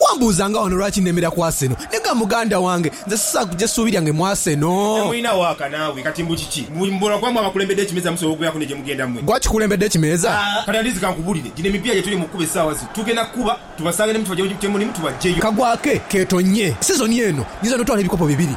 Wambuuza nga wano lwaki nemera ku Arsenal? Nega muganda wange, nze sisaagha kugya suubi lyange mu Arsenal. Temulina waaka naawe. Kati mbu kiki? Mbu mubolo gwamwe abakulembedde ekimeeza musobola okugweraku ne gye mugenda mmwe? Gwe akikulembedde ekimeeza? Kati Andizi kankubuulire, gino emipiira gye tuli mu kukuba essaawa zino, tugenda kukuba tubasange ne mutubaggya gye mulimu tubaggyeyo. Kagwake keetonnye. Sizoni eno nyinza n'otwala ebikopo bibiri.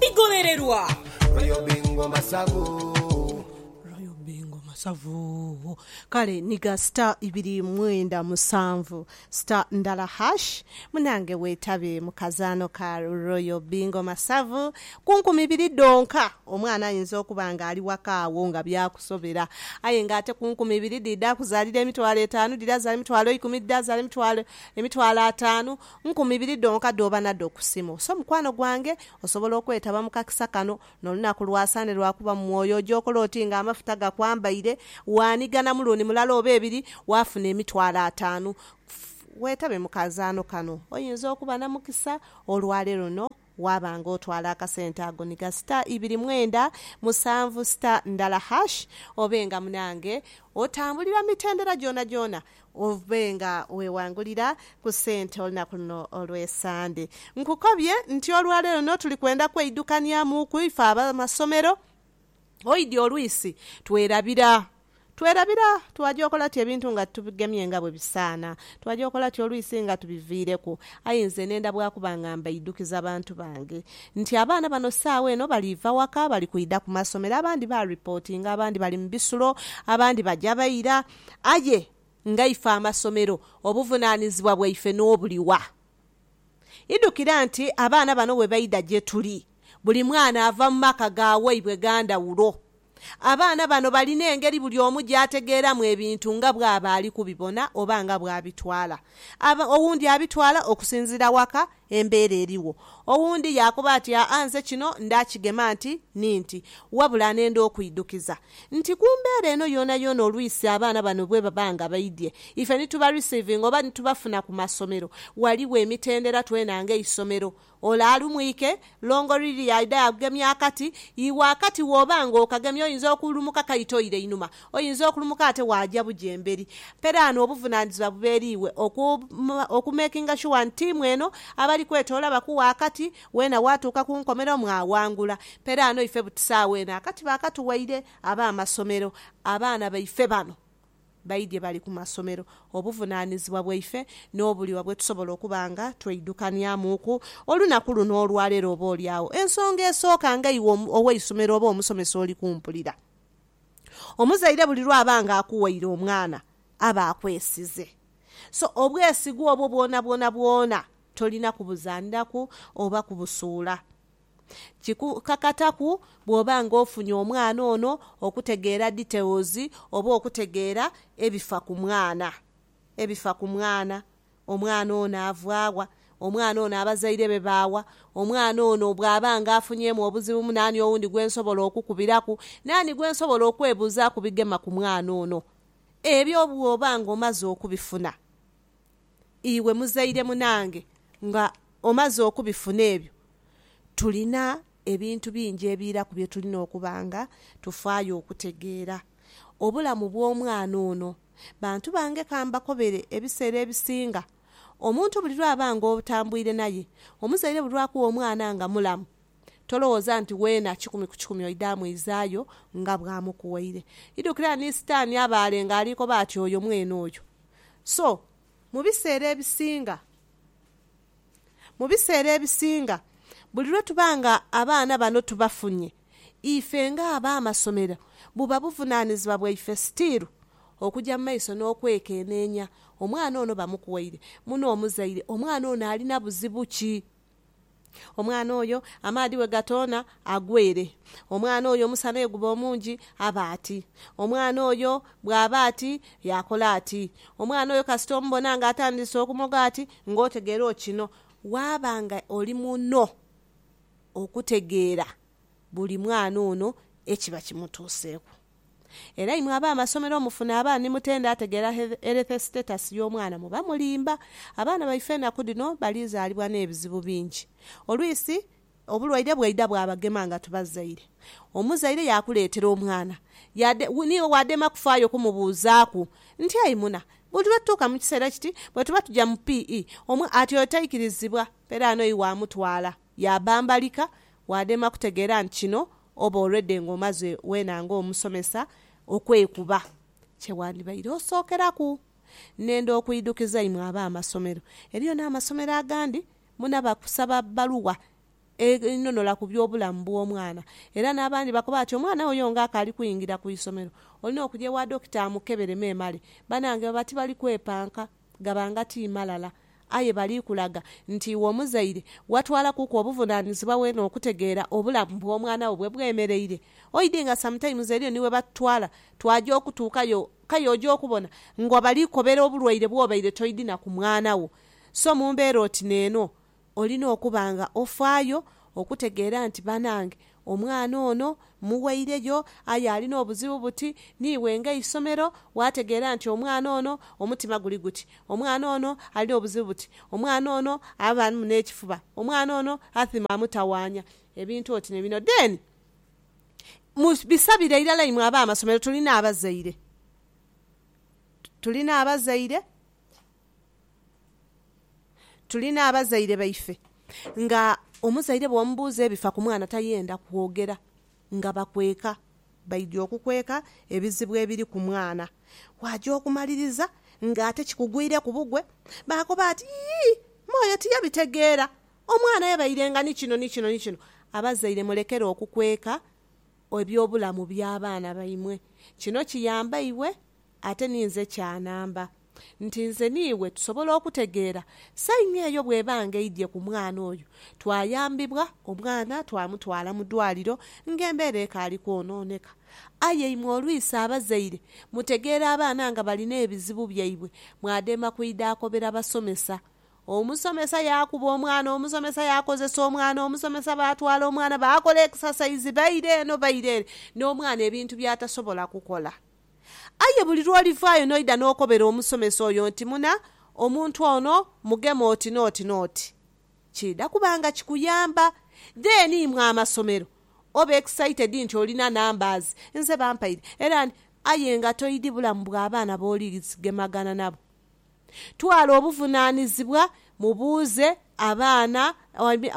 Bigobererwa. Royal Bingo Masavu. Royal Bingo Masavu. Kale niga star ibiri mwenda musanvu star ndala hash munange wetabe mu kazaano ka Royal Bingo Masavu ku nkumi ibiri dhonka. Omwana ayinza okuba nga ali waka agho nga byakusobera aye nga ate ku nkumi ibiri dhidha kuzalira emitwalo etaanu, dhidha zaala emitwalo eikumi, dhidha zaala emitwalo emitwalo ataanu. Nkumi ibiri dhonka dh'oba nadho ku simu. So mukwano gwange, osobola okwetaba mu kakisa kano. N'olunaku lwa Sande lwa kuba mu mwoyo. Oja okola oti nga amafuta gakwambaire. Waanigana mulundi mulala oba ebiri, waafuna emitwalo ataanu. Weetabe mu kazaano kano. Oyinza okuba na mukisa olwaleero no waaba nga otwala akasente ago ni ga star ibiri mwenda musanvu star ndala hash obe nga munange otambulira mu mitendera gyonagyona obe nga wewangulira ku sente olunaku luno olwe Sande. Nkukobye nti olwaleero no tuli kwenda kweidukaniamuuku ife abamasomero. Oidhi olwisi twerabira. Twerabira twaja okola ti ebintu nga titubigemye nga bwe bisaana. Twaja okola ti olwisi nga tubiviireku. Aye nze nenda bwa kuba nga mbaidhukiza bantu bange nti abaana bano saagha eno baliiva waka bali kwidha ku masomero. Abandi ba ripotinga, abandi bali mu bisulo, abandi baja baira. Aye ngaife amasomero obuvunaanizibwa bwaife n'obuliwa? Idhukira nti abaana bano bwe baidha gye tuli, buli mwana ava mu maka ga waibwe ga ndhawulo. Abaana bano balina engeri buli omu gy'ategeeramu ebintu nga bw'aba ali kubibona oba nga bw'abitwala. Aba, owundi abitwala okusinziira waka embeera eriwo. Owundi yaakoba ati, Aa, nze kino ndaakigema nti ni nti, wabula anenda okwidhukiza. nti ku mbeera eno yoonayoona olwisi abaana bano bwebaba nga baidhye ife ni tuba receivinga oba ni tubafuna ku masomero, ghaligho emitendera twena nga eisomero ole alumwike, Longo Lily aidhe agemye akati, iwe akati wooba nga okagemye oyinza okulumuka kaita oire inhuma, oyinza okulumuka ate waaja buja emberi. Mperaano obuvunanizibwa buba eri iwe oku makinga shuwa nti tiimu eno abali kwetoola bakuwa akati Weena waatuuka ku nkomerero mwawangula. Peraano ife butisaawo eno akati baakatuwaire ab'amasomero. Abaana baife bano baidhye bali ku masomero. Obuvunaanizibwa bwaife n'obuliwa bwe tusobola okuba nga tweidhukanyamuuku olunaku luno olwaleero oboolyawo ensonga esooka nga iwe ow'eisomero oba omusomesa oli kumpulira. Omuzaire buli lw'aba nga akuwaire omwana aba akwesize. So, obwesigwa obwo bwonabwona bwona tolina kubuzaniraku oba kubusuula. Kikukakataku bw'oba nga ofunye omwana ono okutegeera details oba okutegeera ebifa ku mwana. Ebifa ku mwana, omwana ono ava wa, omwana ono abazaire be ba wa, omwana ono bw'aba nga afunyeemu obuzibu naani owundi gwe nsobola okukubiraku, naani gwe nsobola okwebuuzaaku bigema ku mwana ono. Ebyo bw'oba nga omaze okubifuna, iwe muzaire munange nga omaze okubifuna ebyo, tulina ebintu bingi ebiiraku bye tulina okuba nga tufaayo okutegeera. Obulamu bw'omwana ono. Bantu bange ka mbakobere, ebiseera ebisinga omuntu buli lwaba nga otambuire naye, omuzaire buli lwakugha omwana nga mulamu, tolowooza nti weena kikumi ku kikumi oidha amwizaayo nga bw'amukughaire. Idhukira ni Sitaani abaale ng'ali koba ati oyo mwene oyo. So, mu biseera ebisinga, mu biseera ebisinga, buli lwe tuba nga abaana bano tubafunye, ife nga ab'amasomero buba buvunaanizibwa bwaife sitiiru okuja mu maiso n'okwekeneenya, Omwana ono bamukuwaire? Muno omuzaire omwana ono alina buzibu ki? Omwana oyo amaadhi bwe gatoona, agwa ere. Omwana oyo omusana bwe guba omungi, aba ati. Omwana oyo bw'aba ati, yaakola ati. Omwana oyo kasita omubona ng'atandiise okumoga ati, ng'otegeera okino. Waaba nga oli muno okutegeera buli mwana ono ekiba kimutuuseeku. Era imwe ab'amasomero omufuna abaana ni mutenda ategeera health status y'omwana muba mulimba. Abaana baife enaku dhino bali zaalibwa n'ebizibu bingi. Olwisi obulwaire bwaidha bwabagema nga tubazaire. Omuzaire yaakuleetera omwana yade niiwe waadema kufaayo kumubuuzaaku nti ayi muna buli lwe tutuuka mu kiseera kiti bwe tuba tuja mu PE omwa ati otaikirizibwa era anoyi waamutwala. yaabambalika, waadema kutegeera nti kino oba already ng'omaze weena ng'omusomesa okwekuba. Kye wandibaire osookeraku nenda okwidhukiza imwe ab'amasomero, eriyo n'amasomero agandi muna bakusaba bbaluwa enhonola ku by'obulamu bw'omwana era n'abandi bakoba ati omwana wo yo ng'akaali kwingira ku isomero olina okugya ewa dokita amukebere memale. Banange baba tibali kwepanka Gaba nga ti malala, aye bali kulaga nti iwe omuzaire watwalakuku obuvunaanizibwa weene okutegeera obulamu bw'omwana wo bwe bwemereire. Oidhi nga sometimes eriyo ni we batutwala twaja okutuukayo kale oja okubona nga bali kobera obulwaire bw'obaire toidhi na ku mwana wo. So mu mbeera oti n'eno, Olina okuba nga ofaayo okutegeera nti banange omwana ono mmuweireyo aye alina obuzibu buti, niiwe nga eisomero waategeera nti omwana ono omutima guli guti, omwana ono alina obuzibu buti, omwana ono abaamu n'ekifuba, omwana ono athima amutawaanya, ebintu oti ni bino. Then mubisabire irala imwe ab'amasomero, tulina abazaire, tulina abazaire. Tuli n'abazaire baife nga omuzaire bw'omubuuza ebifa ku mwana tayenda kwogera nga bakweka. Baidhi okukweka ebizibu ebiri ku mwana waaja okumaliriza ng'ate kikugwireku bugwe. Baakoba ati, Yii, me oyo tiyabitegeera, omwana yabairenga ni kino ni kino ni kino. Abazaire mulekere okukweka eby'obulamu by'abaana baimwe. Kino kiyamba iwe ate ni nze kya namba. nti nze n'iwe tusobola okutegeera saini eyo bw'eba nga eidhye ku mwana oyo. Twayambibwa, omwana twamutwala mu dwaliro ng'embeera ekaali kwonooneka. Aye imwe olwisi abazaire mutegeera abaana nga balina ebizibu byaibwe mwademba kwidha akobera basomesa. Omusomesa yaakuba omwana, omusomesa yaakozesa omwana, omusomesa baatwala omwana baakola ekisasaizi baire eno baire ere n'omwana ebintu by'atasobola kukola. Aye buli lw'olivaayo n'oidha n'okobera omusomesa oyo nti, Muna, omuntu ono mugema oti n'oti n'oti, kiidha kuba nga kikuyamba. Then imwe amasomero oba excited nti olina numbers, nze bampaire era nti. Aye nga toidhi bulamu bwa baana b'oli gemagana nabo. Twala obuvunaanizibwa mu buuze abaana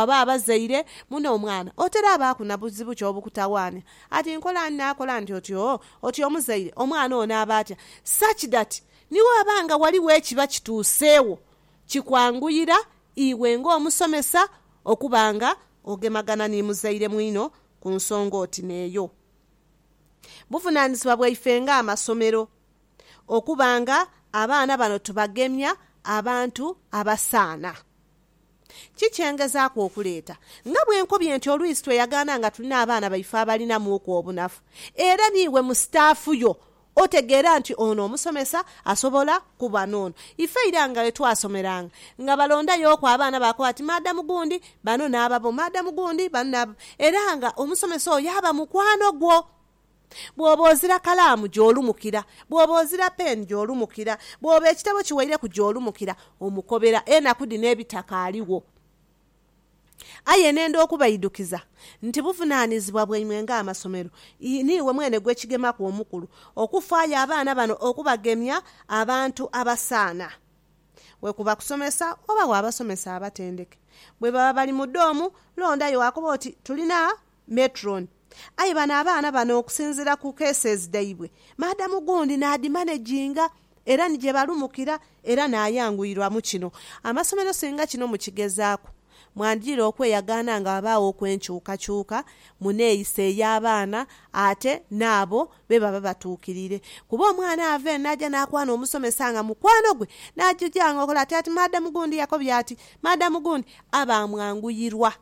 oba abazaire muno omwana oterabaaku na buzibu ki obukutawaanya ati nkola ni naakola nti otyo otyo omuzaire omwana ono aba atya such that ni bwaba nga ghaligho ekiba kituuseewo kikwanguyira iwe ng'omusomesa okuba nga ogemagana ni muzaire mwino ku nsonga oti n'eyo. Buvunaanizibwa bwaife ng'amasomero okuba nga abaana bano tubagemya abantu abasaana. Ki kye ngezaaku okuleeta? Nga bwe nkobye nti oluisi tweyagaana nga tulina abaana baife abalinamuuku obunafu, era niiwe mu sitaafu yo otegeera nti ono omusomesa asobola kuba n'ono. Ife ira nga bwe twasomeranga, nga balondayooku abaana baakoba bati maadamu gundi bano n'ababo, maadamu gundi bano n'ababo, era nga omusomesa oyo aba mukwano gwo. Bw'oba ozira kalaamu, gy'olumukira. Bw'oba ozira peeni, gy'olumukira. Bw'oba ekitabo kiweireku, gy'olumukira. Omukobera enaku dhino ebitakaaliwo. Aye nenda okubaidukiza nti buvunaanizibwa bwaimwe ng'amasomero, niiwe mwene gwe kigemaku omukulu, okufaayo abaana bano okubagemya abantu abasaana. Bwe kuba kusomesa, oba wo abasomesa abatendeke. Bwe baba bali mu doomu, londayo wakoba oti, Tulina Matron, Aye bano abaana bano okusinziira ku cases dhaibwe, maadamu gundi n'adhimanaginga era ni gye balumukira era n'ayanguirwamu kino. Amasomero singa kino mukigezaaku, mwandidhira okweyagaana nga ghabaaghoku enkyukakyuka mu neeyisa ey'abaana ate n'abo be baba batuukirire. Kuba omwana ava eno n'aja n'akwana omusomesa nga mukwano gwe n'aja ojanga okola ati, ati maadamu gundi yakobye ati, maadamu gundi, aba amwanguyirwa.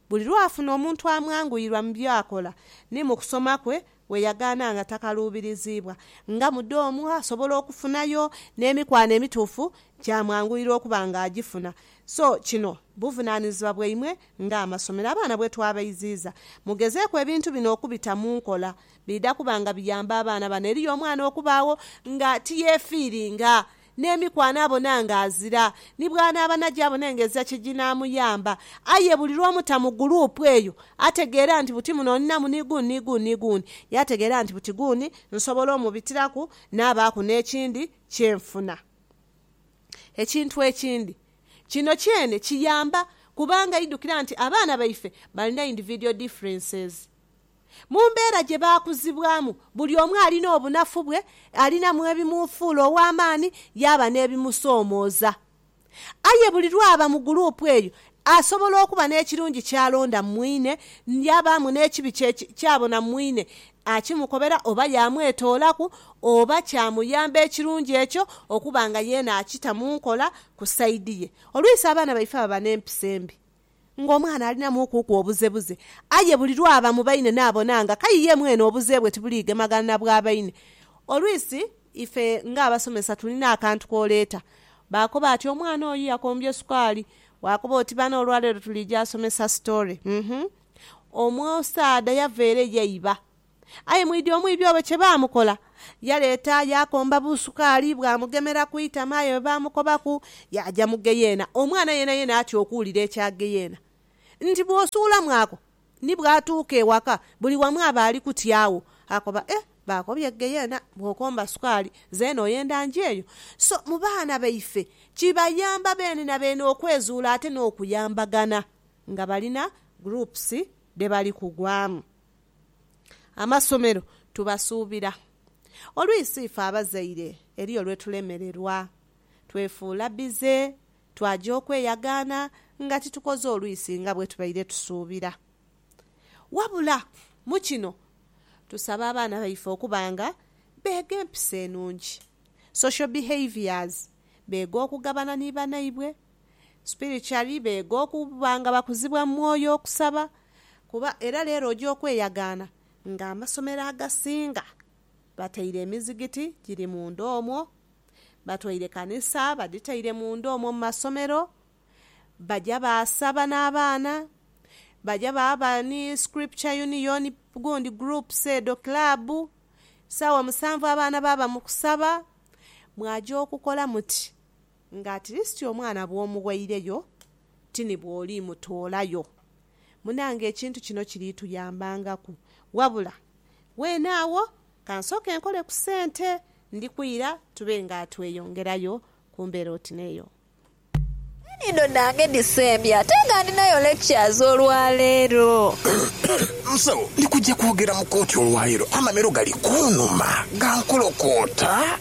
Buli lw'afuna omuntu amwanguyirwa mu by'akola ni mu kusoma kwe, we yagaana nga takaluubiriziibwa. Nga mudoomu, asobola okufunayo n'emikwano emituufu kyamwanguyira okuba nga agifuna. So kino buvunaanizibwa bwaimwe ng'amasomero. Abaana bwe twabaiziiza, mugezeeku ebintu bino okubita mu nkola. Biidha kuba nga biyamba abaana bano. Eriyo omwana okubaagho nga tiyeefiiringa. N'emiku anaabona nga azira, ni bw'anaaba naja abone nga ezira kye jinaamuyamba. Aye buli lw'omuta mu guluupu eyo, ategeera nti buti muno ninamu ni guuni ni guuni ni guuni. Yaategeera nti buti guuni nsobola omubitiraku naabaaku n'ekindi kye nfuna. Ekintu ekindi, kino kyene kiyamba kubanga idhukira nti abaana baife balina individual differences. Mu mbeera gye baakuzibwamu, buli omu alina obunafu bwe, alinamu ebimufuula ow'amaani yaaba n'ebimusoomooza. Aye buli lw'aba mu guluupu eyo, asobola okuba n'ekirungi ky'alonda mu mwine, yaabaamu n'ekibi kye ky'abona mu mwine, akimukobera oba yaamwetoolaku, oba kyamuyamba ekirungi ekyo okuba nga yeena akita mu nkola ku saidi ye. Oluisi abaana baife baba n'empisa embi, ng'omwana alinamu okuuku obuzebuze. Aye buli lw'aba mu baine naabona nga k'aye ye mwene obuze bwe tibuliigemagana na bwa baine. Olwisi ife ng'abasomesa tulina akantu k'oleeta. Baakoba ati, Omwana oyo yakombye sukaali. Waakoba oti, Bana olwaleero tuliija somesa sitoore. Uhmm. Omusaadha yava ere yaiba. Aye mwidhi omwibi oyo kye baamukola? Yaleeta yaakomba busukaali, bwamugemera ku itama, aye bwe baamukobaku, yaaja mu ggeyeena. Omwana yeenayeena atya okuwulira ekya ggeyeena nti bw'osuulamu ako, ni bw'atuuka ewaka buli wamu aba ali kutyagho. Akoba, Eh, baakobye ggeyeena bw'okomba sukaali, zeena oyenda nje eyo? So, mu baana baife kibayamba beene na beene okwezuula ate n'okuyambagana nga balina groups dhe bali kugwamu. Amasomero tubasuubira. Oluisi ife abazaire eriyo lwe tulemererwa, twefuula bize, twaja okweyagaana nga titukoze oluisi nga bwe tubaire tusuubira. Wabula mu kino tusaba abaana baife okuba nga beega empisa enungi, social behaviours, beega okugabana ni banaibwe, Spiritually beega okuba nga bakuzibwa mu mwoyo okusaba kuba era leero oja okweyagaana nga amasomero agasinga bataire emizigiti giri munda omwo, batwaire kanisa badhitaire munda omwo mu masomero baja baasaba n'abaana, baja baaba ni scripture union gundi groups edho club, saawa musanvu abaana baaba mu kusaba. Mwaja okukola muti. Nga atirisiti omwana bw'omuweireyo, ti ni bw'oliimutoolayo. Munange ekintu kino kiriituyambangaku. Wabula weene agho ka nsooke nkole ku sente, ndi kwira tube nga tweyongerayo ku mbeera oti n'eyo. Enhindo dhange dhisembye ate nga ndinayo lectures olwaleero. Musawo, ndi kuja kwogera mu kooti olwaleero. Amamiro gali kunuma, gankolokoota.